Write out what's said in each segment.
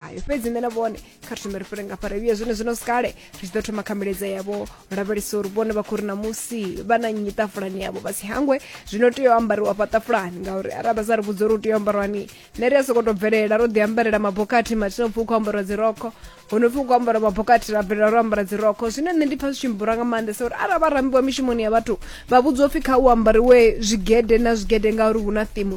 ayo fhedzi nṋe na vhone kha thome ri fhele ngafha ravhiya zwine zwino sikale ri tshi ḓo thoma kha miledza yavho lavhelesa uri vhone vha khou ri namusi vha na nnyi ṱafulani yavho vha si hangwe zwino tea u ambariwa fha ṱafulani ngauri arali vha sa ri vhudza uri u tea u ambarwani nṋe ri a sokou tou bvelela ro ḓi ambarela mabokathi mathina upfhi u khou ambariwa dzirokho ho no pfi u khou ambara mabokathi ra bvelela ro ambara dzirokho zwine nṋe ndi pfha zwi tshi mbura nga maanḓesa uri arali vha rambiwa mishumoni ya vhathu vha vhudziwa upfhi kha u ambariwe zwigede na zwigede ngauri hu na thimu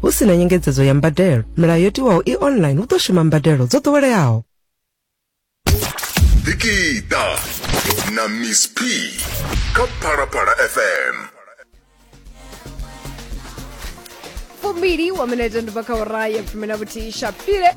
Hu si na nyengedzedzo ya mbadelo, milayo yo tiwaho i online hu ḓo shuma mbadelo dzo ḓoweleaho. Dikita na Miss P kha Phalaphala FM. Fumbili wa minete ndi bva kha ora ya fumi na vhuthihi shapile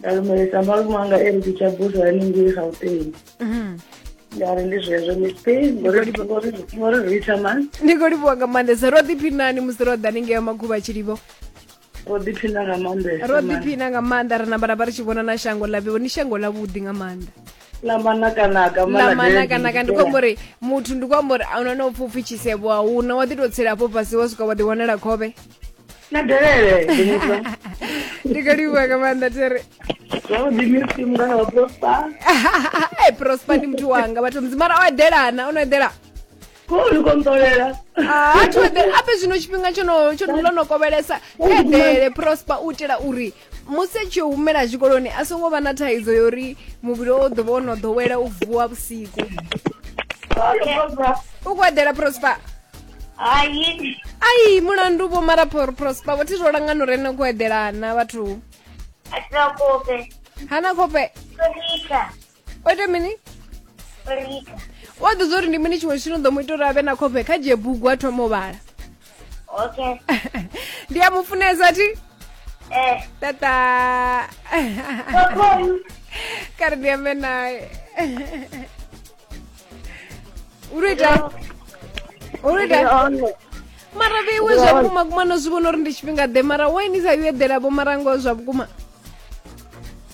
nda lumelisa malume anga e ri ndi tsha busa haningei gauteng mhm. nda ri ndi zwezwo mispe ngori ri ita mani ndi khou livhuwa nga maanḓesa ro ḓiphinani musi ro ḓa ningei ya makhuvha tshilivho ro ḓiphina nga maanḓesa ro ḓiphina nga maanḓa ri namba ra vha ri tshi vhona na shango ḽa vhiwo ni shango ḽa vhuḓi nga maanḓa lamanakanaka ndi khou amba uri muthu ndi khou amba uri a una na upfha upfhi tshisevho a una wa ḓi tou tsela afho fhasi wa swika wa ḓi wanela khovhe na delele ndi khou livhuwa nga maanḓa tere zwavhuḓi misi mungana wa prosper e prosper ndi muthu wanga vhathu mzi mara o eḓelana o no eḓela ko ni kontolela Ah, a thi eḓela ape zwino tshifhinga tsho no tsho no- ḽo no kovhelesa eḓele prosper u itela uri musi a tshi yo humela tshikoloni a songo vha na thaidzo ya uri muvhili o ḓo vha o no ḓowela u vuwa vhusiku u khou eḓela prosper Hai. ai mulandu vho mara Pro- prosper vho thi zwo langana uri ene u khou eḓelana vhathu Atlakope. hana khofhe Rika. o ita mini o lika u a ḓudza uri ndi mini tshiṅwe tshithu no ḓo mu ita uri a vhe na khofhe kha dzhie bugu a thoma u vhala okay ndi a mu funesa thi eh tata kokon kare ndi ambe naye u ri ita u ri ita ono mara vheiwe zwa vhukuma kuma no zwi vhona uri ndi tshifhinga ḓe mara wainisa yo eḓela vho mara ngoho zwa vhukuma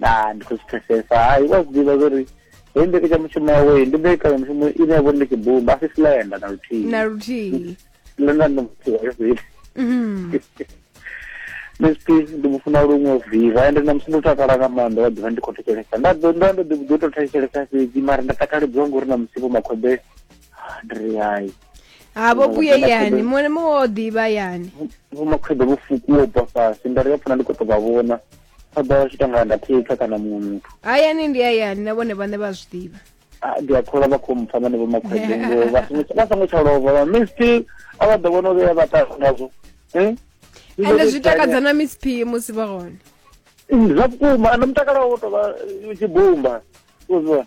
na ndi khou zwi pfesesa hai wa zwi ḓivha zwori hei mbekanyamushumo yawe ndi mbekanyamushumo ine ya vhori ndi tshibumba a si slenda na luthihi na luthihi slenda ndi muthihi wa zwine mhm. msp ndi mu funa luṅwe viva ende na musi ndo takala nga maanḓa wa ḓivha ndi khou thetshelesa nda ḓo nda ndo ḓibuḓo tou thetshelesa fhedzi mara nda takaledziwa ngori na musipo makhombe ndi ri hai ha vho vhuye yani muṅwe na muṅwe o ḓivha yani vhomakhwebe vho fukuwo bva fhasi nda ri ya pfuna ndi khou tou vha vhona ṱhoḓa wa tshita nga ndathetha kana muṅwe muthu hayani ndi hayani na vhone vhane vha zwi ḓivha ah, ndi a kholwa vha khou mpfa vhane vho makhwede ngo vha songo tsha lova vha mi still a vha ḓo vhona uri ya vha ṱaha ngazwo hmm? ende zwi takadza na miss p musi vha hone zwa vhukuma na mutakalo wo tovha tshibumba uzwa